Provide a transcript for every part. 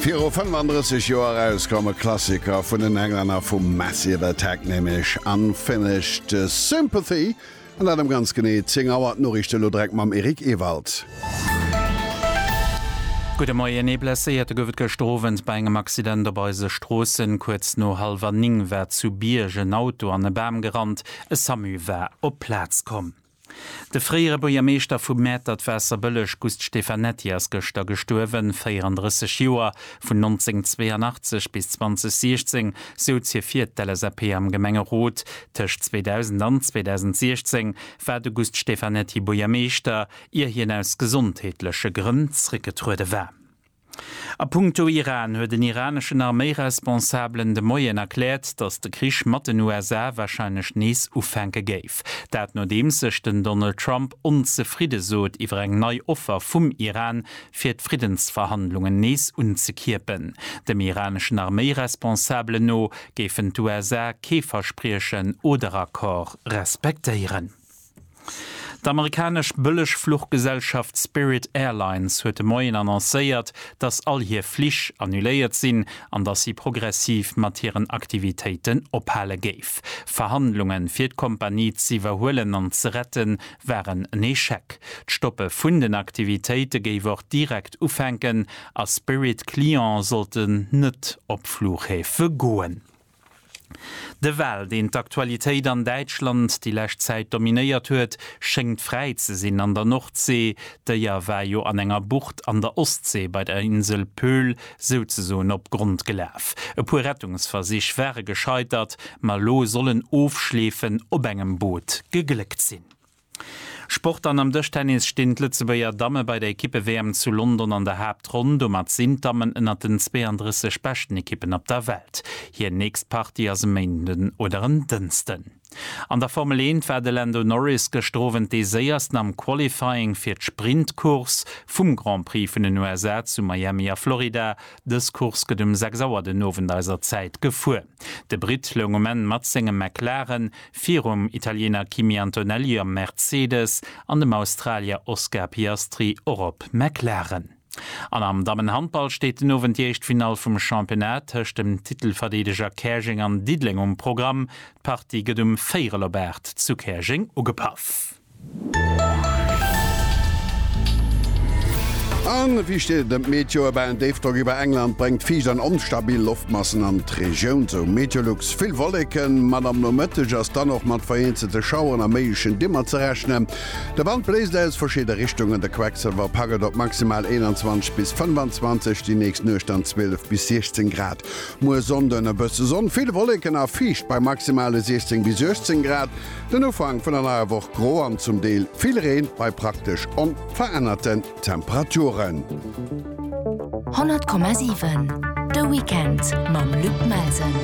Viru 35 Joer erauskomm, e Klassiker vun den Englänner vu Massive Attack, nämlech Unfinished Sympathy. An dat ëm ganz genee 10 Auer. D'Noriichte elo direkt mam Eric Ewald. Gudde Moien. Ee Blesséierte gouf et gëschter Owend bei engem Accident op eise Stroossen. Kuerz no hallwer 9 war zu Bierg en Auto an e Bam gerannt. E Samu war op d'Plaz komm. De fréiere Buergermeeschter vu Mäertert-Waasserbëlleg Gust Stefanetti ass gëschter gestuerwen, 34 Joer. Vun 1982 bis 2016 souz hie fir d'LSAP am Gemengerot. Tëscht 2000 an 2016 war de Gust Stefanetti Buergermeeschter, ier hien aus gesondheetleche Grënn zréckgetruede war. A punkto Iran huet en iraneschen Arméiresponsabelen de Moien erkläert, datt de Krich mat den USA warscheinlech nees ufänke géif. Dat nodeems sech den Donald Trump onzefridde sot iwwer eng nei Offer vum Iran, fir d'Friddensverhandlungen nees unzekierpen. Dem iraneschen Arméiresponsabelen no géifen d'USA kee Verspriechen oder Accord respektéieren. D'amerikanesch Bëllegfluchgesellschaft Spirit Airlines huet de Moien annoncéiert, dass all hir Flich annuléiert sinn an dass si progressiv mat hiren Aktivitéiten ophale géif. Verhandlunge fir d'Kompanie z'iwwerhuelen an ze rette waren en Echec. D'Stoppe vun den Aktivitéite géif och direkt ufänken a Spirit-Cliente sollte net op Fluchhäfe goen. De Wal, deen d'Aktualitéit an Däitschland déi lescht Zäit dominéiert huet, schéngt fräi ze sinn an der Nordsee. D'Déier war jo an enger Bucht an der Ostsee bei der Insel Pöhl souzesoen op Grond gelaf. E puer Rettungsversich ware gescheitert, ma elo soll en Ofschleefen op engem Boot gegléckt sinn. Sport, An am Dëschtennis stinn d'Lëtzebuerger Damme bei der Ekippe-WM zu London an der Haaptronn. Domat sinn d'Dammen ënnert den 32 beschten Ekippen op der Welt. Hir nächst Partie ass e Méinden oder en Dënsten. An der Formel Eent war de Lando Norris gëschter Owend dee Séiersten am Qualifying fir d'Sprint-Course vum Grand Prix vun den USA zu Miami a Florida. Dës Course gëtt um 6 Auer den Owend eiser Zäit gefuer. De Britt loung um Enn mat sengem McLaren virum Italiener Kimi Antonelli op Mercedes an dem Australier Oscar Piastri och op McLaren. An am Dammenhandball steet den Owend déi éischt Finall vum Championnat tëscht dem Titelverdeedeger Käerjeng an Diddeleng um Programm. D'Partie gëtt um Véierel op 8 zu Käerjeng ugepaff. A wéi steet et ëm d'Meteoe? Bah, en Déifdrock iwwer England bréngt fiicht an onstabil Loftmassen an d'Regioun, sou Meteolux. Vill Wolleken, mat am Nomëtteg ass dann och mat vereenzelte Schaueren a méiglechen Dimmer ze rechnen. De Wand bléist aus verschidde Richtungen, de Quecksëlwer packt et op maximal 21 bis 25, déi nächst Nuecht dann 12 bis 16 Grad. Muer Sonnden e bësse Sonn, vill Wolleken a fiicht bei maximale 16 bis 18 Grad. Den Ufank vun der neier Woch, gro an zum Deel vill Reen bei praktesch onverännerten Temperaturen. 100,7 De Weekend mam Luc Melsen.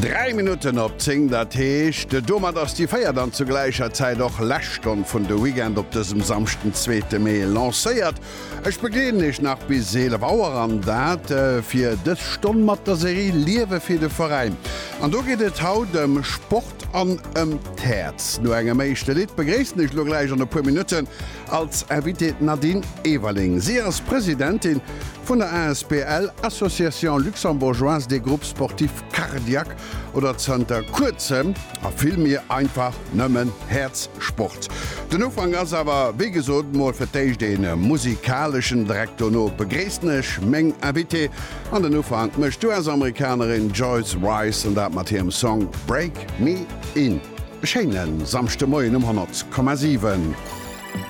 Dräi Minutten op zéng, dat heescht, domat ass déi véiert an zu gläicher Zäit och lescht Stonn vun De Weekend op dësem Samschden, zweete Mee, lancéiert. Ech begleeden Iech nach bis 11 Auer an dat fir dës Stonn mat der Serie Liewe fir de Veräin. An do geet et haut ëm Sport an ëm d'Häerz. No engem éischte Lidd begréissen ech elo gläich an e puer Minutten als Invitée d'Nadine Everling. Si ass Presidentin vun der asbl Association Luxembourgeoise des Groupes Sportifs Cardiaques oder zanter kuerzem a vill méi einfach nëmmen Häerzsport. Den Ufank ass awer wéi gesot mol fir d'éischt ee musikaleschen. Direkt dono begréissen ech meng Invitée an den Ufank mécht d'US-Amerikanerin Joyce Wrice an dat mat hirem Song Break Me In. E schéine Samschdemoien um 100,7.